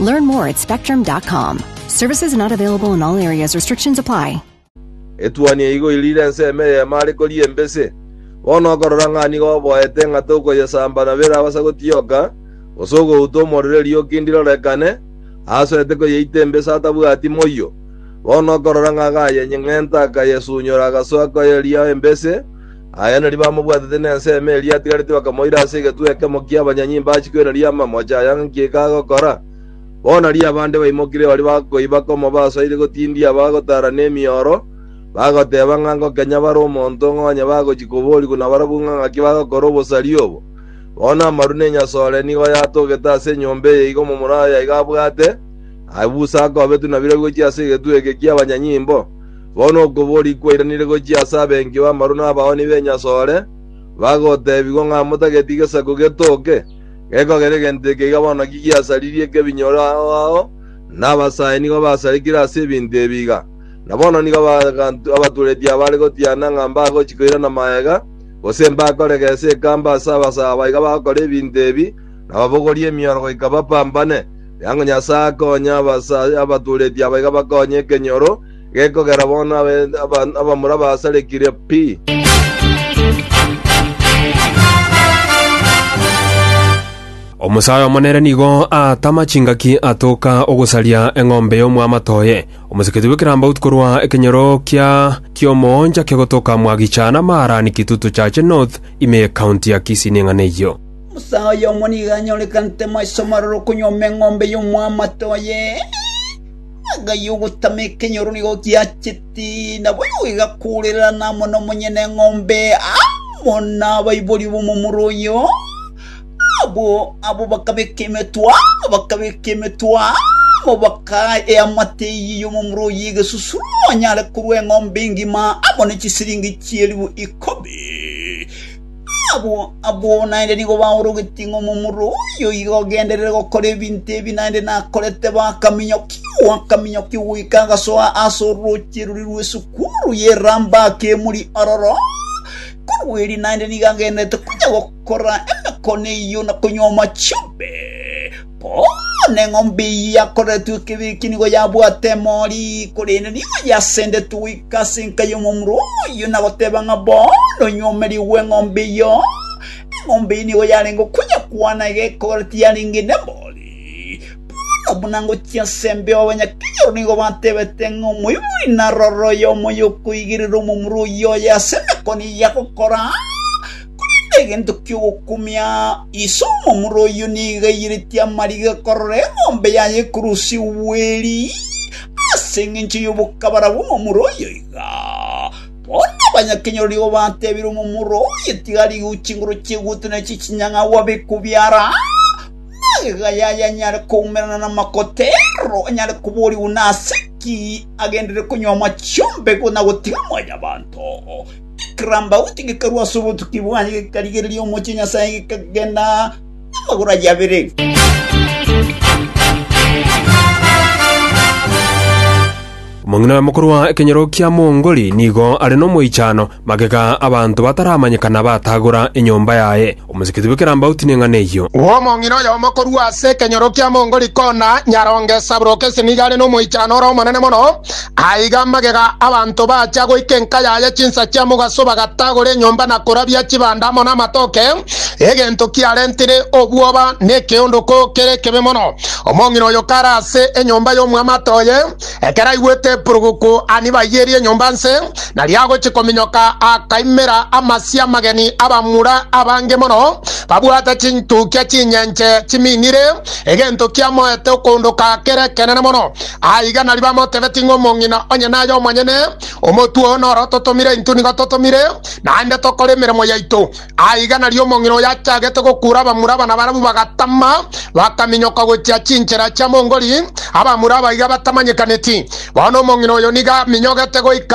Learn more at spectrum.com. Services not available in all areas. Restrictions apply. Etuoni eigo irire ense ime y'eema are koria embese. Bono okorora ng'a nigo oboete ng'a tokoyesamba na birabasa gotioka, gose ogouta omorero erioki ndirorekane, aasoete koyeita embese atabwati moyio. Bono okorora ng'a gayenyeng'enta akayesunyora agasoa koyeria embese, Aya nario bamobwatete nensemo eria atigarete bakamoira ase egetunwa ekemo ki'abanyanyimba achie kwereria amamocha aya ng'aki eke agokora. Bono aria abande baimokire baria bakoiba komoba asoire gotindia bagotaara nemioro, bagoteba ng'a ngokenye bare omonto ng'a onye bagochia koborigwa nabarabwo ng'a ng'aki bagokora obosari obo. Bono amaru na enyasore nigo oyatogete ase enyomba eye igo omomura oye iga abwate, aye busa akobetwe nabirobi gochia ase egetunwa eke ki'abanyanyimbo. Bono okobori kwairanire gochia ase abenki b'amaru na abaoni b'enyasore, bagoteebigwa ng'a motageti gesaku getooke. Gekogera egento eke iga bono ki giasaririe ekebinyoro ao ao, na abasae nigo basarekire ase ebinto ebi iga. Na bono nigo abanto abatureti abare gotiana ng'a mbagochia koirana magega, gose mbakore gese ekambe ase abasae aba iga bagokora ebinto ebi, na babogorie emioro goika bapambane. Riango Nyasae akonye abasae abatureti aba iga bakonye ekenyoro, gekogera bono abe- aba- abamura basarekirie pi. Omosae omo nere nigo aatama chingaki atoka ogosaria eng'ombe y'omwamato oye. Omoseketu bw'ekerambaut korwa ekenyoro kia ki'omooncha kegotoka Mwagicha na Maarani Kitutu Chache North ime y'ekaunti ya Kisii neng'ana eyio. Omosae oyomo nigo anyorekanete maiso maroro konyuoma eng'ombe y'omwamato oye. Ng'a y'ogotama ekenyoro nigo giacheti, na boigo gegakoorerana amo nomonyeneng'ombe amo nabaibori b'omomura oyio. Abwo abwo bakabeka emetwe amo, bakabeka emetwe amo, bakaa eamate eyio y'omomura oyio egesusuro onyare korua eng'ombe engima amo ne chisiringi chi'elifu ikomi. Abwo abwo naende nigo baorogetie ng'a omomura oyo iga ogenderere gokora ebinto ebi naende nakorete bakaminyokigwa akaminyokigwa goika agasoa ase orooche rore rw'esukuru ye Rambach emuri ororo. Korwa erio naende nigo agendererete konya gokora emekone eyio na konywa amachumbi. “Bono eng'ombe eyio yakoretwe ekebi eki nigo yabwate emori, korende nigo yasendetwe goika ase enka y'omomura oyio na goteba ng'a, Bono inwe omerie bw'eng'ombe eyio, eng'ombe eyio nigo yarenge okonyekwana egekogera tiyarenge nemori. Bono buna ngochia ase embeo abanyakenyoro nigo batebete ng'a, Omoibori narore oyomo oyokoigerera omomura oyio oye ase emekone eyio agokora, Korende egento ki'ogokumia, ise omomura oyio nigo aiyeretie amariga korora eng'ombe yaye ekorusigwa eri, ase engencho y'obokabara bw'omomura oyo iga. Bono abanyakenyoro nigo bateebire omomura oye, Tiga rigou chinguru chi'egutu na echie chinyang'au abe kobiara, magega yaye anyare koumerana namakotero, anyare koborigwa nase ki agenderere konywa amache 'ombego na gotiga mwanyabanto. Kerambauti gekarwa ase obotuki bwaye, gekarigereria omochie Nyasae, gekagenda amagoro aye abere. Omong'ina mokoro wa ekenyoro kia Mongoli nigo are nomoichano, magega abanto bataramanyekana batagora enyomba yaye. Omosikiti bwe kerambauti neng'ana eyio. Omong'ina oyomo korwa ase ekenyoro kia Mongoli kona nyaronge Sabrokesi nigo are nomoichano ore omonene mono. Aiga magega abanto bachia goika enka yaye chinsa chia mogaso bagatagora enyomba na korabia chibanda amo namatoke, egento kiarentire obwoba na ekeondoko kere ekebe mono. Omong'ina oyo kare ase enyomba y'omwamate oye. Ekero aigwete epuruguku anibayerie enyomba nse, na riagochia kominyoka akaimera amasio amageni abamura abange mono, babwate chintukia chinyenche chiminire, egento kiamoete okoondoka kere ekenene mono. Aiga nario bamotebeti ng'a omong'ina onye naye omonyene, Omotwe oo noro totomire intwe nigo totomire, naende tokore emeremo yaito. Aiga nario omong'ina oyo achagete gokuura abamura abana barabwo bagatama, bakaminyoka gochia chinchera chia Mongoli, abamura abaiga batamanyekaneti. Bono omong'ina oyo nigo aminyogete goika